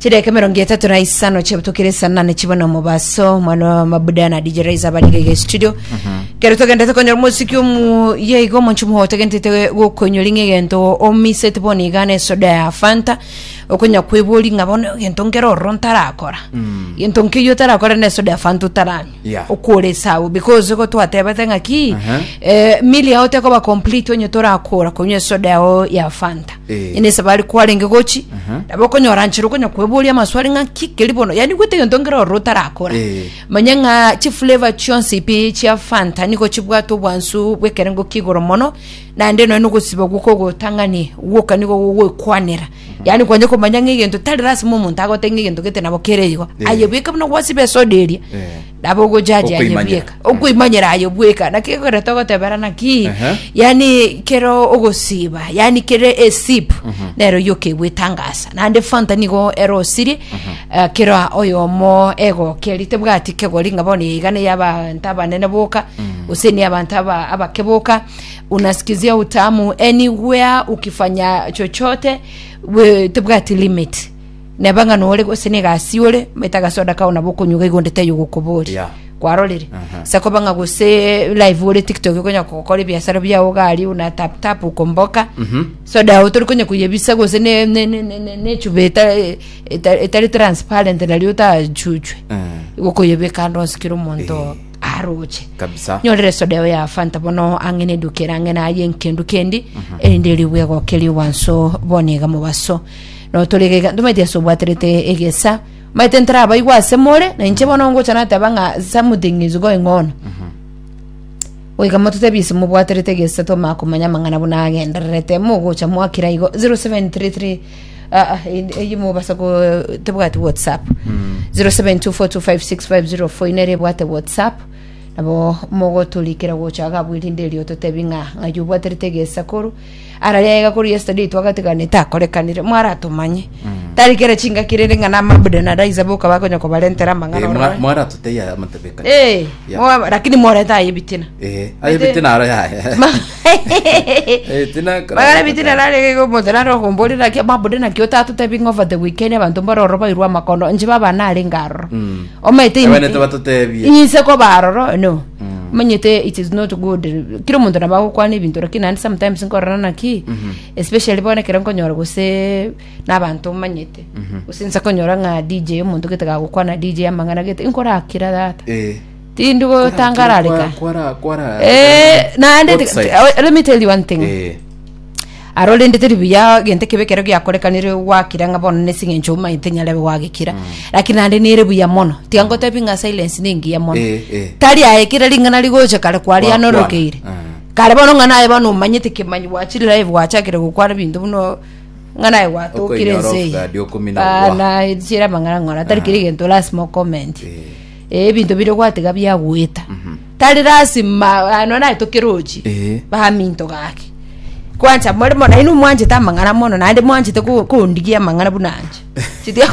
Chidaeka emerongo etato na isano chiabutokire saa nane chibwe na omobaso omwana wa mabuda na dj raiza abariga iga estudio kero togenda tokonyora omosiki omu ye iga omonchu moho otagentete gokonyori ng'a egento omiseti bono igana esoda ya fanta okonya kwebori ng'a bono egento nkere ororo ntarakora egento nkeyio otarakora na esoda ya fanta otaranywa Yeah. okora esabu because igo twatebete ng'a ki Aha. eh, mili yao tekoba complete onye torakora konywa esoda yao ya fanta Eh. ene esabari kwarenge gochi Aha. nabo okonyora nchiro okonya kweboria amaswali ng'a ki keri bono yani gwete gento ngero ororo otarakora Eh. manya ng'a chiflavor chionsi pi chia fanta nigo chibwate obwansu bw'ekerengo kigoro mono naende noe nogosiba gwoko ogotang'ani gwoka nigo gogwekwanera Yaani kwanja komanya ng'a egento tari lasima omonto agotebie ng'a egento gete nabo kere igo Eh. aye bweka buna gwasiba esoda eria Eh. nabo ogojaji aye Okoimanyera. bweka Eh. okoimanyera aye bweka naki ekoreta ogotebera naki Ehe. yaani kero ogosiba yaani kere esip Mhm. nero yo kegwetangasa naende fanta nigo ero osirie eh, kero oyomo egokeri tebwati kegori ng'a bono yaigana yabanto abanene boka gose ni abanto aba- abake boka Unasikizia utamu anywhere ukifanya chochote we- tibwati limit neba ng'a nore gose na egasi ore maete agasoda kao nabo okonyuga igo onde taiyo gokobori Yeah. kwarorire Aha. sakoba ng'a gose live ore tiktok okonya gokora ebiasara biao gari una tap tap okomboka Mhm. soda yao tori konya koyebisa gose ne- ne- ne- ne- ne- nechuba eta- eta- etari transparent nario otachuchwe Eh. igo okoyebeka ande onsikire omonto Eh. aroche Kabisa. nyorere soda eo ya fanta bono ang'e na eduka ere ang'e naye nkendu kendi erinde erigwe egokeri owanso bone iga mobaso notorega iga ntomaite ase obwaterete egesa maete ntarabaigwa ase more na inche bono ngocha nateba ng'a something is going on goika mototebi ase mobwaterete egesa tomanya komanya amang'ana buna agendererete mogocha mwakira igo 0733 Ah, ah, in- eyi mobasa ko tebwati whatsapp 0724256504 ine ere ebwate whatsapp nabo mogoturikera gocha gabu erinde erio totebi ng'a ng'ai obwaterete egesakoro araria egakoro yesterday twagatigana etakorekanire mwaratomanye tari kera chingaki rende ng'a namabuda na daisa boka bakonya kobarentera amang'ana orore. mwaratoteyare amatebeka Eh, Yeah. mwa- lakini moreta aye ebitina Eh, aye Ete- bite naro yaya Ma- Eh, tinakara- bagare bitire rare gomotera ro gomborera naki mabude naki otatotebi over the weekend abantu mbaroro bairwe amakono nje baba nare ngaroro Mm. omete Ewe nete batotebie. inse ko baroro no manyete it is not good kira omonto naba gokwana ebinto lakini naende sometimes nkorana naki especially bono ekero nkonyora gose nabanto manyete gose nse konyora ng'a dj omonto gete gagokwana dj amang'ana gete inkorakira data Eh. Tindi gotangarareka. Kwara kwara. Eh, naende Both sides. oh, let me tell you one thing. Eh. arorendete ribuya gento kebe kero giakorekanire gwakira ng'a bono nesing'encho omaete nyarebe gwagekira lakini naende nere buya mono tiga ngotebi ng'a silence nengiya mono Eh, eh. tari aye kera ring'ana rigocha kare kwaria Gwakwana. norokeire Ah. kare bono ng'a naye bono omanyete kemanyi gwachire live gwachakire gokwana binto buno ng'a naye gwatokire Okoinyora ense off guard, okomina gwa. bana chira amang'ana ng'ora tari kiri gento lazima okomenti Eh. Ebinto bire gwatega biagoeta. Tari lasima ah, nonye naye tokerochi Eh. baminto gake. Kwancha more mo naino mwanchete amang'ana mono naende mwanchete ko- kondigia amang'ana buna anche. Chitia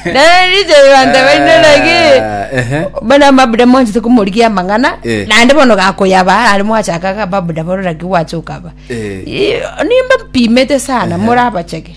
Nariche banta baino naki. Ah, ehe. Bana mabuda mwanchete komorigia amang'ana Eh. naende bono gakoyaba ari mwachaka ga babuda bono naki gwachoka ba. Eh. Ii, Nimba mpimete sana morabacheke.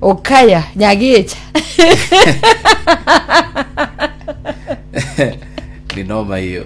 okaya nyagecha ni noma hiyo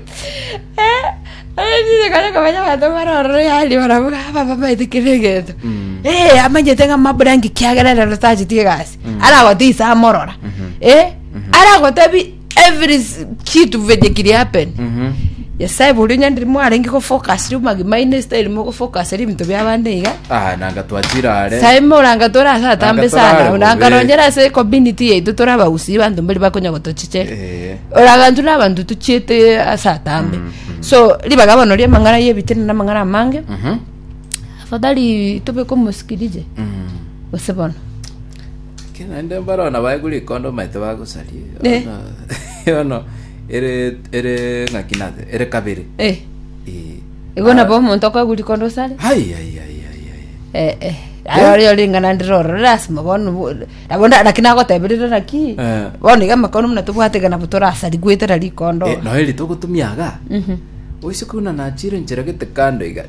kare komanya abanto barorore yari barabuga baba maete kere egento Mm. Eh, amanyete ng'a mabrangi kiagera rero tacheti egasi aragote ise amorora Eh, aragotebi every s- kitu venye kiri happen Mhm. nyasaye boria onyandire mwarenge gofokasire omagima aino esitayari mogofokasire ebinto bia abande iga Ah, nanga twachira are sae moranga tora ase atambe Nanga torare sana bobe. orangaronyera ase community yaito tora abagusii banto mbari bakonya gotochiche Eh, oragantu na abanto tochiete ase atambe so ribaga bono ria amang'ana ya ebitina na amang'ana amange mhm, afadhali tobeke omosikirije mhm. gose bono Ekero naende mbarabwo nabaegure rikondo omanyete bagosaria Eh. Yono- yono ere ere ng'aki naze ere kabere Eh, Eh. igo nabo omonto okoegwa rikondo osare Ai, ai, ai, ai, ai. Eh, eh. Aye ore oringana ndire oro lasima bono bo- nabo nda- naki nagoteberera naki Eh. bono iga amakono muna tobwate iga nabo torasari goetera rikondo Eh, noeri togotumia aga Mhm. oise kuna nachire nchera gete kando iga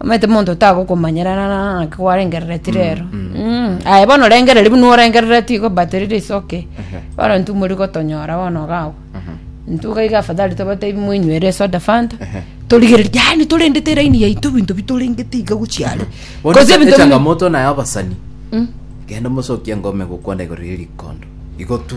omanyete monto tagokomanyerana na naki gwarengereretie rero Mm. aye bono orengereri buna orengereretie igo but riri is okay bono intwe mori gotonyora bono gagwe intwe gaiga afadhali tobatebi moinywere esoda fanta torigereri yaani torendete eraini yaito ebinto bitorengete iga gochiare Bono Cause ebinto bimwe- echangamoto naye abasani genda omosokie ngome gokwana igoro ya erikondo igo tu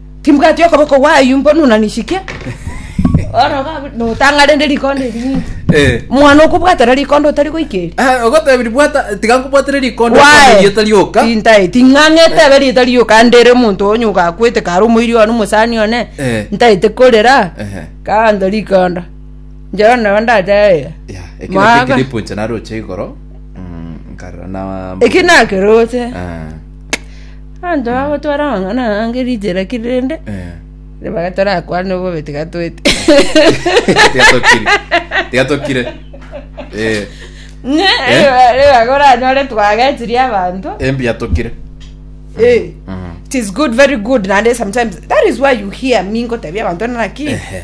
Timbwati okoboko gwayu mbo nuna nisike. Bono ga- notang'a rende rikondo eri ng'iti. Eh. Mwana okobwatera rikondo otari goika eri. Ah, ogotebiri bwata tiga nkobwatere rikondo Wae. rieta rioka Tintae, ting'ang'ete ebe rieta rioka ande ere omonto onye ogakwete kare omoiri one omosani one Eh. ntaete korera Ehe. kanto rikondo njoro nabo ndatebire Yeah, ekero Mwaga. kekiri punche naroche igoro mm, nkarora na eki nakeroche Ah. Abanto bagotwara amang'ana aya ang'e richera ki rende, ribaga torakwane obobe tiga toete. Tiga tokire. Tiga tokire. Eh, Ng'a riba- ribaga oranyore twagechiri abanto. embuya tokire. Eh, Mm. it is good, very good, naende sometimes that is why you hear me ngotebia abanto naki Ehe.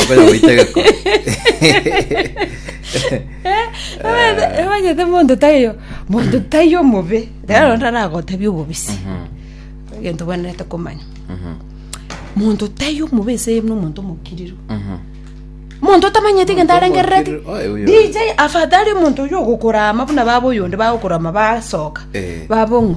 Okonya goita egekoo. emanyete monto taiyo monto taiyo omobe rero ntaragotebia obobisi Mhm, egento bwenerete komanya mhm, monto taiyo omobe ase buna omonto omokiriro mhm. monto otamanyeti egento Monto arengerereti omokiriro, oe, oyo. dj afatari omonto oyo ogokora ama buna baba oyonde bagokora ama basoka Eh. babong'o